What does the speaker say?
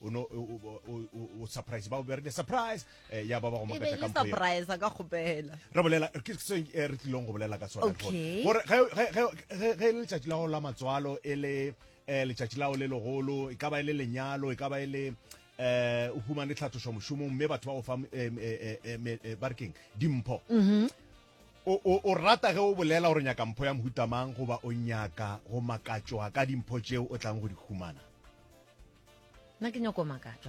o no o surprise ba be re surprise eh, ya ba ba go makatla ka mpo surprise ka gopela re bolela ke se eh, re tlilong go bolela ka tsona gore ge ge ge ge le tšatši la go la matswalo e le eh letšatši lao le legolo e ka ba e le lenyalo e ka ba e le eh o humane tlhathošo mošomong mme batho ba go fa eh, eh, eh, eh, eh barkeng dimpho mm-hmm. O, o, o rata ge o bolela gore o nyaka mpho ya mohuta mang goba o nyaka go makatšwa ka dimpho tšeo o tlang go di humana? Nna ke nyoko makatšwa.